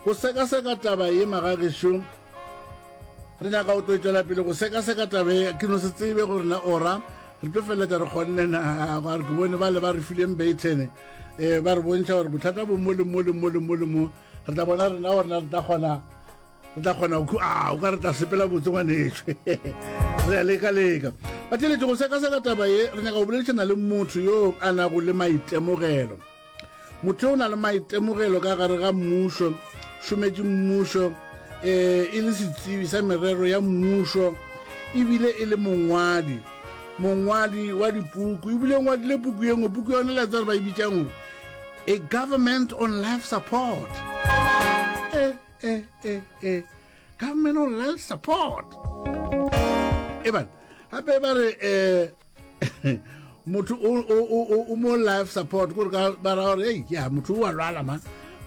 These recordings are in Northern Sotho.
Go sekaseka taba ye magagešo re nyaka go tloetšwela pele go sekaseka taba ye ke no se tsebe gore na ora re tlo feleletša re kgonne na gore ke bone ba le ba re fileng baitene um eh, ba re bontšha gore bothata bo mo le mo le mo le mo le mo re tla bona rena gore na re tla kgona re tla kgona a o ka re tla sepela botse ngwanešwe re ya leka leka ba theletše go sekaseka taba ye re nyaka go boledišana le motho yo a nago le maitemogelo Motho o na le maitemogelo ka gare ga mmušo, šometše mmušo, um e le setsebi sa merero ya mmušo, ebile e le mongwadi mongwadi wa dipuku ebile o ngwadile puku ye nngwe puku yone le tsare ba e bitsang a government on life support e e e e government on life support e bana gape ba re um motho o mo life support gore ka bara gore ei ya motho o a lwala ma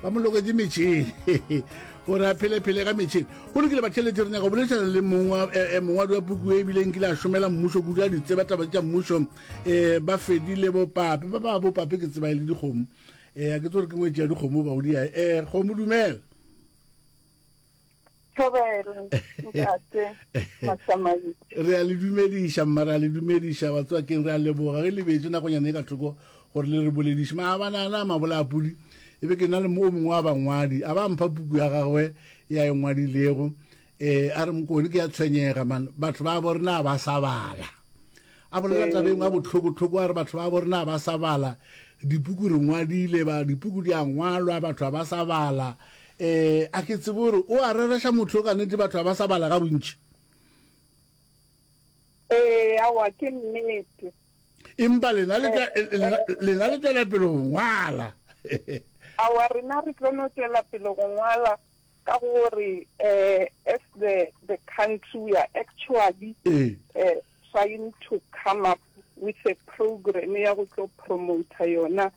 ba mo loketse metšhini gore a phelephele ka metšhini go lokile batheletse re nyaka go boledišana le eh, eh, mongwadi wa puku e ebile nkile a šomela mmušo kudu a ditseba taba tša mmušo um ba fedile bopape ba ba bopape ke tseba e le dikgomo um a ke tse gore ke ngwetsi ya dikgomo baodia um kgomo dumela re a le dumediša mma re a le dumediša batswakeng re a leboga re lebetse nakonyane e ka thoko gore le re bolediše maabanana mabolapodi e be ke na le o mongwe wa bangwadi a ba mpha puku ya gagwe ya e ngwadilego um a re mokone ke ya tshwenyega man batho ba bo rena ba sa bala A bolela taba e nngwe ya bohloko-hloko, a re batho ba borena ga ba sa bala, dipuku re ngwadile, ba, dipuku di a ngwalwa, batho ga ba sa bala. Um a ke tsebe gore o a rereša motho yo ka nete, batho ga ba sa bala ga bontši. Ee, aowa, ke nnete. Empa lena le tla- eh, lena- eh, lena le tšwela pele go ngwala. Aowa, rena re tlo no tšwela pele go ngwala, ka gore as the the country we are actually trying to come up with a program ya go tlo promoter yona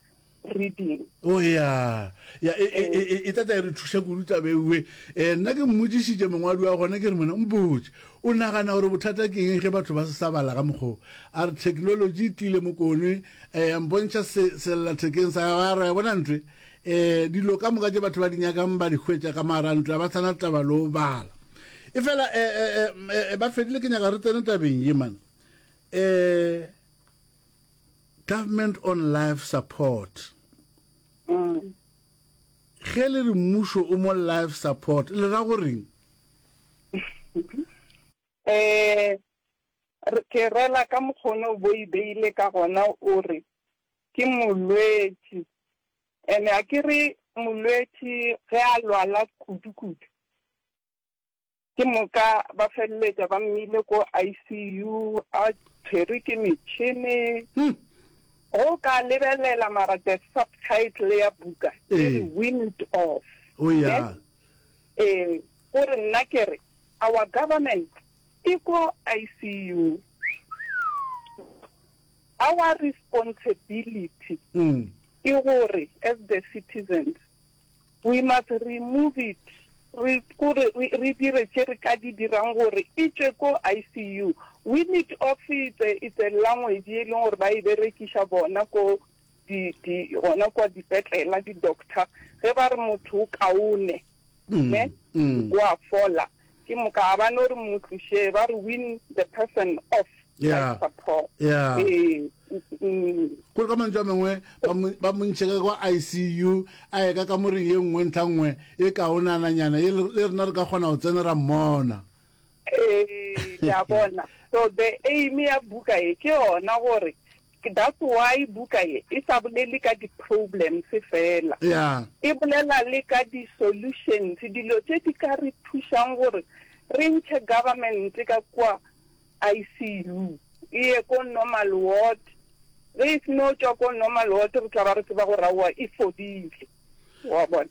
reading o ya ya e, e, e, e tata e re thuša kudu tabeue um eh, nna ke mmodišitše mongwadi wa gona ke re mona mpotse o nagana gore bothata ke eng ge batho ba se sa bala ka mokgoo a re technology e tlile mokone um eh, mpontšha selellathekeng sa gago ya re ya bona ntwe E, dilo ka moka tše batho ba di nyakang ba di hwetša ka maarantlo a ba sana taba le o bala e fela e, e, e, e, e ba fedile ke nyaka re tsene tabeng ye mane e, government on life support mm. ge le re mmušo o mo life support le ra goreng um ke rela ka mokgone o bo e beile ka gona o re ke molwetši and a ke re molwetši ge a lwala kudu kudu ke moka ba feleletša ba mmile ko ICU a tshwerwe ke metšhene go ka lebelela mara the subtitle ya buka e re wind off oh yeah eh gore nna ke re our government e ko ICU Our responsibility ke gore as the citizens we must remove it, re kore re dire tše re ka di dirang gore e tšwe ko ICU. We need of it, it's a language ye e leng gore ba e berekiša bona ko di di gona kwa dipetlela di doctor ge ba re motho o kaone. ne wa fola ke moka a ba no re mo tliše ba re win the person off Yeah. support Yeah. Eh, mm, kore ka mantšu a mangwe ba mo- ba montšhe ka kwa icu a ye ka kamoreng ye nngwe ntlha nngwe e kaonananyana ye le le rena re ka kgona go tsena ra mmona eh, ke a bona so the aim ya buka e ke yona gore That's why buka ye e sa bolele ka di problems fela, e bolela le ka di solutions, dilo tše di ka re thušang gore re ntšhe government ka kua ICU e ye ko normal ward, ge e seno tšwa ko normal ward re tla ba re tseba gore aowa e fodile, wa bona.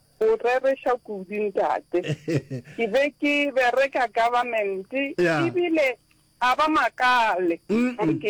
O rereša kudu ntate. Ke be ke bereka government ebile a ba makale gore ke